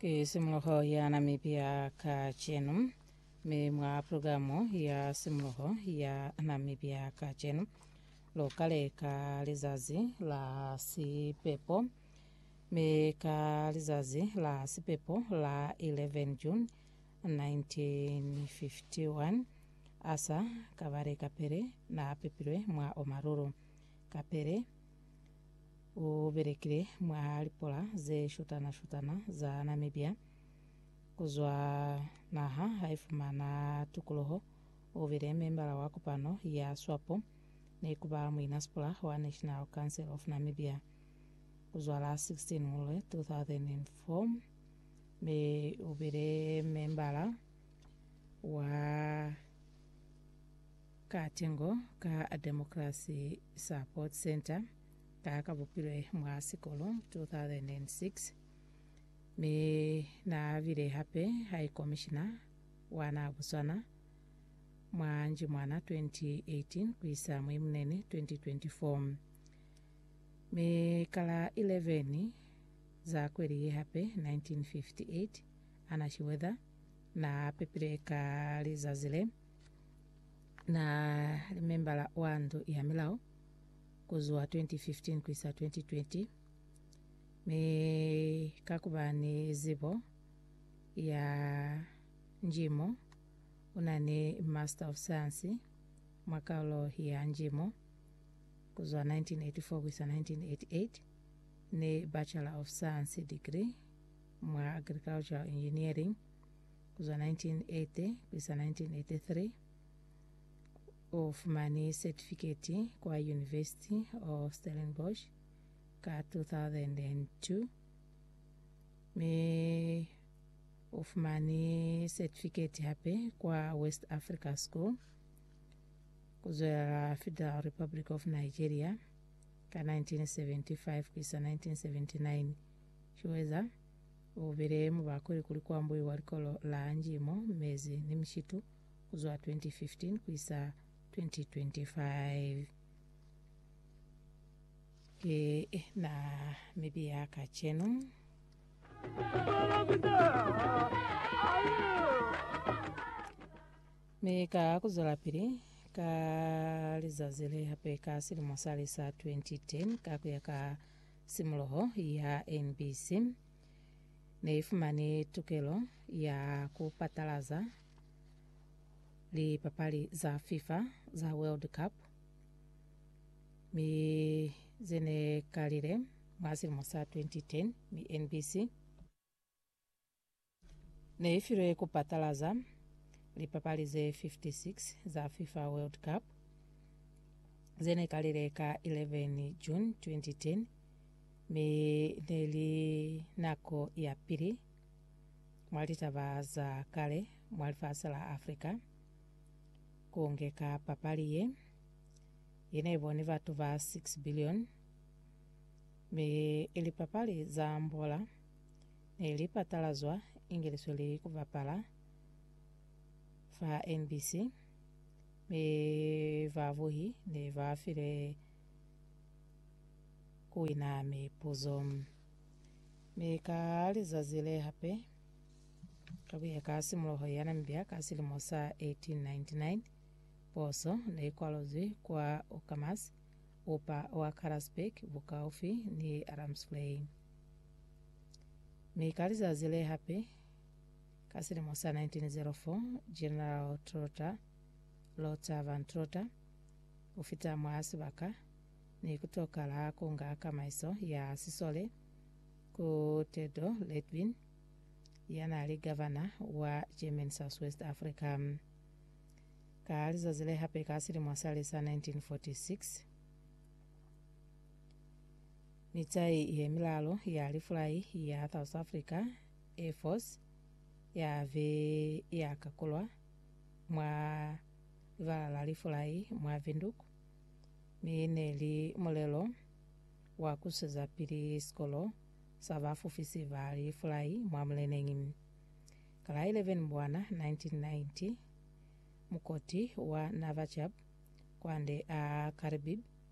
Kisimuluho ya Namibia kacenu. Mi mwa pulogalamu ya simuluho ya Namibia kacenu, lukale ka lizazi la sipepo mi ka lizazi la sipepo la 11 June 1951, Asa kabale kapele naapepilwe mwa omalulu. Kapele ubelekile mwa lipola zeshutana-shutana za Namibia. Kuzwa naha haifumana tukuluho, ubile membala wa kopano ya Swapo ni kuba muinasipula wa National Council of Namibia. Kuzwa la 16 Ngulwe 2004, Mi ubile membala wa katengo ka Democracy Support Centre ka kabupilwe mwa sikolo 2006 mi naabile hape High Commissioner wa naha Botswana mwa Njimwana 2018 kuisa mwi Munene 2024 mi kala 11 za kweli ye hape 1958, Anna Schroeder na pepile ka lizazi le na li membala wa ndu ya milao ku zwa 2015 ku isa 2020, mi ka ku ba ni zibo ya njimo, u na ni Master of Science mwa kaulo ya njimo ku zwa 1984 ku isa 1988. ni Bachelor of Science degree mwa Agricultural Engineering kuzwa 1980 kuisa 1983. Ufumani setifiketi kwa University of Stellenbosch ka 2002 mi ufumani setifiketi hape kwa West Africa School kuzwelela Federal Republic of Nigeria Ka 1975-1979, Chiweza u bile mubakweli kuli ku ambuiwa likolo la Angie mo mezi ni mishitu ku zwa 2015-2025. Ki na mibi ya kacenu. Mi ka kuzwelapili, ka lizazi le hape ka silimo sali sa 2010, ka kuya ka simuloho ya NBC, ne ifumani tukelo ya kupatalaza lipapali za FIFA za World Cup, mi zene kalile mwa silimo sa 2010, mi NBC, Ne i filwe ku patalaza lipapali ze 56 za FIFA World Cup ze ne kalile ka 11 June 2010, mi ne li nako ya pili mwa litaba za kale mwa lifasi la Africa ku ngeka papali ye, ye ne boni batu ba 6 billion, mi ili papali za mbola. Ne li patalazwa inge li sweli ku bapala fa NBC, mi ba buhi ne ba file ku wina mipuzo. Mi ka lizazi le hape, ka kuya ka simuloho ya Namibia ka silimo sa 1899, poso ne i kwalozwi kwa Uckermans, upa wa Karasburg, bukaufi ni Ramsplay. Mi ka lizazi le hape, ka silimo sa 1904, General Trotter, Lothar von Trotter, u fita mwa sibaka ni ku tokala ku nga kamaiso ya sisole ku Theodor Leitwin, ya n'a li gavana wa German Southwest Africa. Ka lizazi le hape ka silimo sale sa 1946, Mitai ye milalu ya lifulai ya South Africa Air Force ya be ya kakulwa mwa libala la lifulai mwa Windhoek, mi ne li mulelo wa ku sweza pili sikolo sa ba fufisi ba lifulai mwa muleneñi. Ka la 11 Mbwana 1990, mukoti wa Navachab kwande a Karibib,